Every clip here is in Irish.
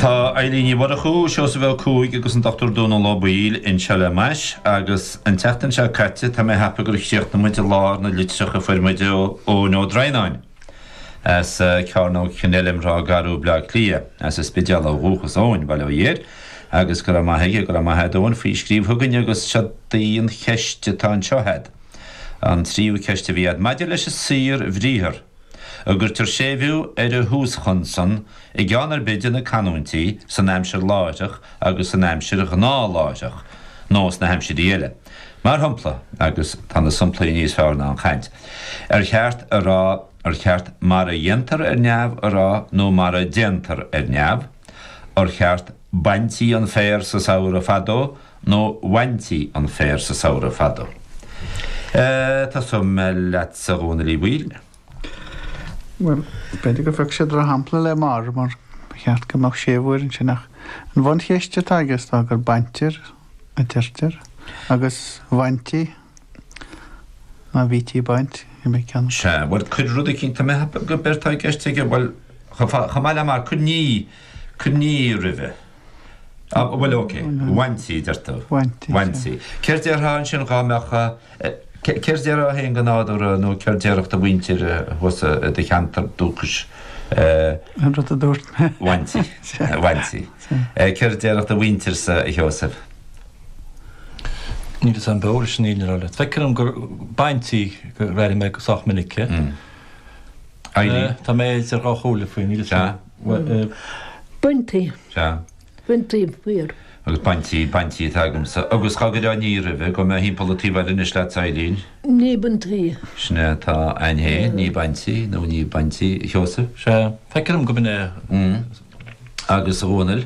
Tá Eilín Ní Mhurchú, Seosamh Ó Cuaig agus an Dr. Dónal Ó Baoill inseo le m'ais agus an tseachtain seo caite tá mé ag ceapadh gur chríochnaigh muid i lár na litreach a fuair muid ó Eoin Ó Droighneáin as Cearnóg Kenilworth, Ráth Garbh, Bleá Cliath, as an Spidéal ó dhúchas Eoin, bail ó Dhia air agus go raibh maith aige, go raibh maith a'd Eoin faoi scríobh chugainn agus seo í an cheist atá anseo a'd, an tríú ceist a bhí a'd, maidir leis an saorbhriathar. An gcuirtear séimhiú ar an thúschonsan i gceann ar bith de na canúintí san aimsir láithreach agus san aimsir ghnáthláithreach nó sna haimsirí eile, mar shompla, agus tá na somplaí níos fearr ná an chaint, ar cheart a rá, ar cheart mar a dhéantar ar neamh a rá nó mar a déantar ar neamh? Ar cheart 'Baintí an féar sa samhradh fadó' nó 'Bhaintí an féar sa samhradh fadó'? Tosóidh mé leatsa a Dhónaill Uí Bhaoill. Bhuel, b'fhéidir gur phioc sé drochshampla le 'mar' mar ba cheart go mbeadh séimhiú air ansin ach an bhuncheist atá aige is dóigh gur 'baintear' a deirtear agus 'bhaintí'. Má bhítí ag baint, bhí mé ag ceannacht. Sea, bhuel, cuir rud eicínt, tá mé ag ceapadh gurb é atá i gceist aige, bhuel, chomh maith le mar, cuir ní, cuir ní roimhe. Á, bhuel, ok, bhaintí, deir tú. Bhaintí, sea. Bhaintí. Céard déarfá ansin dhá mbeadh, céard déarfá féin go nádúrtha nó céard déarfadh do mhuintir thusa i do cheantar dúchais? An rud a dúirt mé. Bhaintí. Sea. Bhaintí. Sea. Céard déarfadh do mhuintirsa, a Sheosaimh? Níl fhios a'm beo leis an fhírinne a rá leat. Feictear dom gur baintí gur airigh mé go sách minic. Tá mé idir dhá chomhairle faoi, níl fhios a'm. Baintí. Baintí féar. Agus baintí, baintí atá agamsa. Agus dá gcuirfeá ní roimhe, gabhfaidh mé timpeall an taobh eile anois leat a Eilín. Ní baintí. Sin é atá a'inn fhéin, ní baintí nó ní baintí a Sheosaimh. Sea. Feictear dom gurb ea. Agus a Dhónaill.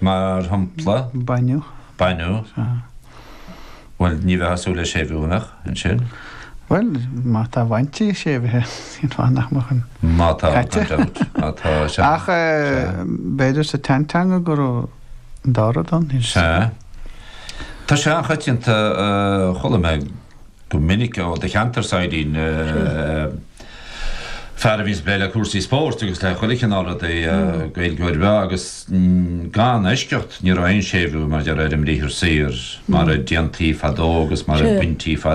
Mar shampla? Baineadh. Baineadh? Sea. Bhuel, ní bheadh súil le séimhiú amach ansin. Bhuel, má tá bhaintí séimhithe, cén fáth nach mbeadh an Má tá, gan dabht. Má tá, sea. Ach b'fhéidir sa tseanteanga go raibh an dá rud ann. Sea. Tá sé an-choitianta, chuala mé go minic ó do cheantarsa, a Eilín, fear a bhíonns ag plé le cúrsaí spóirt agus le chuile chineál rudaí Gaeilgeoir breá agus gan eisceacht ní raibh aon séimhiú mar a déarfá ar an mbriathar saor mar a déantaí fadó agus mar a baintí